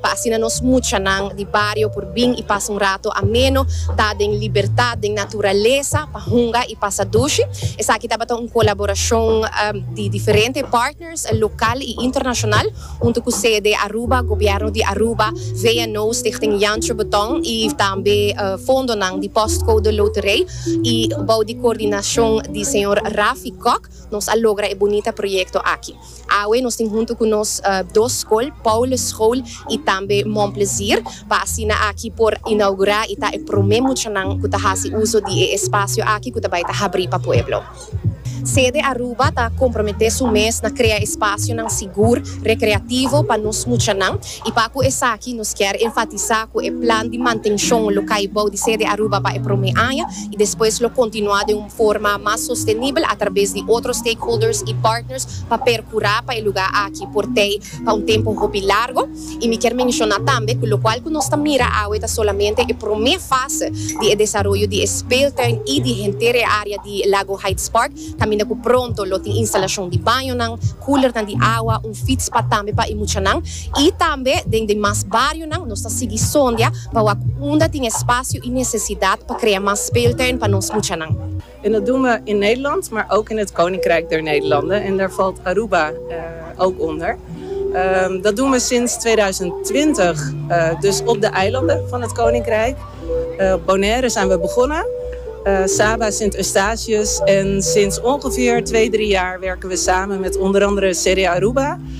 pa asina nos muchanan di bario por bin i pasa un rato ameno ta den libertat den naturalesa pa hunga i pasa dushi. Esaki tabata un colaboracion di diferente partners local i internacional hunto cu sede Aruba, Gobierno di Aruba, VNO, Stichting Jancho Beton i tambe fondonan di Postcode Loterij i bou di coordinacion di señor Rafi Kok nos a logra e bunita proyecto aki. Awe nos tin huntu cu nos dos scol, Paulus School y tambe Mon Plezier, pa asina aki por inaugura y ta e prome muchanan cu ta haci uzo di e espacio aki cu ta bay ta habri pa pueblo. Sede Aruba ta compromete su mes na crea espacionan sigur, recreativo pa nos muchanan y pa cu esaki nos kier enfatisa cu e plan di mantencion lo cay bou di Sede Aruba pa e prome aña y despues lo continua den un forma mas sostenibel atrabes di otro stakeholders y partners pa percura pa e lugar aki por tey pa un tempo hopi largo y mi kier menciona tambe cu locual cu nos ta mira awe ta solamente e prome fase di e desaroyo di e speeltuin y di henter e area di Lago Heights Park caminda cu pronto lo tin instalacion di bañonan, coolernan di awa, un fietspad tambe pa e muchanan. I tambe den demas barionan nos ta sigui sondia pa wak unda tin espasio i nesesidat pa krea mas speeltuin pa nos muchanan. En dat doen we in Nederland, maar ook in het Koninkrijk der Nederlanden en daar valt Aruba ook onder. Dat doen we sinds tweeduizend twintig dus op de eilanden van het Koninkrijk. Op Bonaire zijn we begonnen, Saba, Sint Eustatius en sinds ongeveer twee, drie jaar werken we samen met onder andere CD Aruba.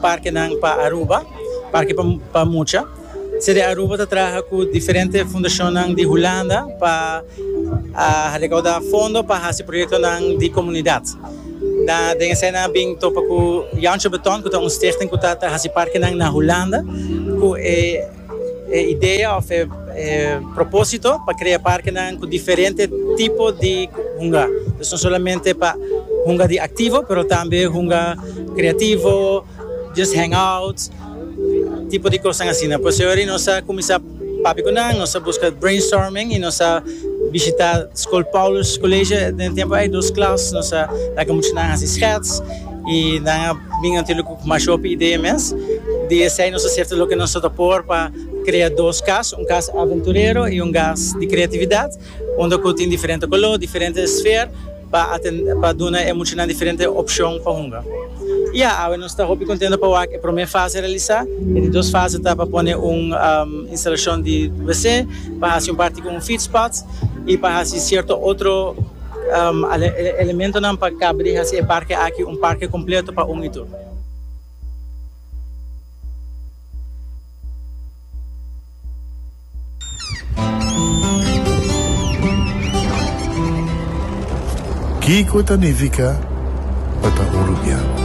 Parkenan pa Aruba, Parke pa Mucha. CD Aruba ta traha ku diferente fundashonnan di Hulanda pa rekaudá fondo pa hasi proyektonan di komunidat. Nan den esei nan a bin topa ku Jantje Beton ku ta un stichting ku ta hasi parkenan na Hulanda ku e E idea of e proposito pa crea parkenan cu diferente tipo di hunga. Pues no solamente pa hunga di activo pero tambe hunga creativo, just hang out, tipo di cosnan asina. Pues hoy nos a cuminsa papia cu nan, nos a busca brainstorming y nos a bishita School Paulus College den e tempo ey dos klas. Nos a laga muchanan haci schets. Y nan a bin anto lo cu mas hopi idea mes. Di esey nos a sirta loke nos ta por pa crea dos cas, un cas aventurero y un cas di creatividad, unda cu tin diferente color, diferente esfer pa atender, pa duna e muchanan diferente opcion pa hunga. Y ya, awe nos ta hopi contento pa wak e prome fase realisa. E di dos fase ta pa pone un instalacion di wc, pa haci un parti cu un fietspad y pa haci cierto otro. Ala e elementonan pa kaba di hasi e parke aki un parke kompleto pa un i tur. Kiko ta nifiká pa ta hurupiá?